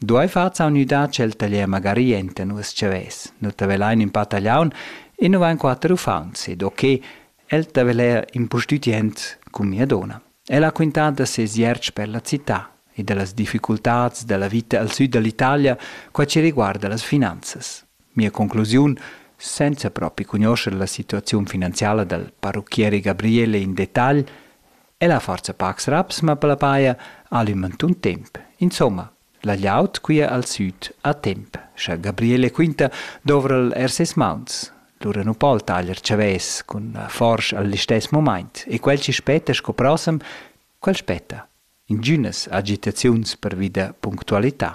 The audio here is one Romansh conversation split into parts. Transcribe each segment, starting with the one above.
Duei far saunüdà tschel taglier magari enta nus chavès. Nu ta velain in pa tagliaun e nu vain quatter uffants ed o che el ta veler impustütient cun mia dona. El ha quintà da ses ierts per la città e da las difficultats da la vita al sud da l'Italia qua ci riguarda las finanzas. Mia conclusiun, senza propi cugnuoscher la situaziun finanziala dal parrucchieri Gabriele in detagl, Ella forza pacs raps ma per la paia al ün mantun temp. Insomma, la gliaut quia al süd a temp, scha Gabriele quinta dovra'l eir ses mauns. Lura nu po'l taglier chavès cun la forsch al listess momaint e quel chi spetta sco prossem, quel spetta. Ingünas agitaziuns pervi da punctualità.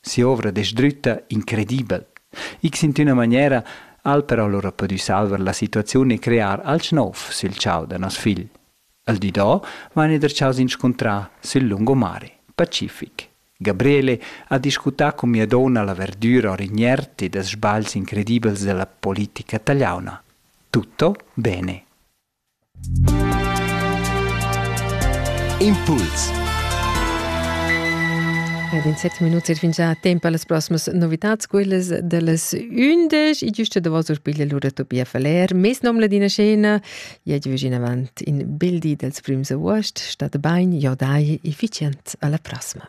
si'ovra desdrütta incredibel. Ics in üna maniera al però lura pudü salvar la situaziun e crear alch nouv sül chau da nos figl. Al di do vaine derchaus inscuntrar sül lungomare, pacific. Gabriele ha discutà cun mia donna la verdüra or inert ed els sbagls incredibels della politica tagliauna. Tutto bene. Impuls Ed in set minuts et fingià temp a las proximas novitats, quellas da las ündesch. I giusta davos urpiglia lura Tobia Faller, mes nom ladina scena. Ja giu in avant in bel di dels prims avuost. Stat bain, jo dai, efficient, alla prossima.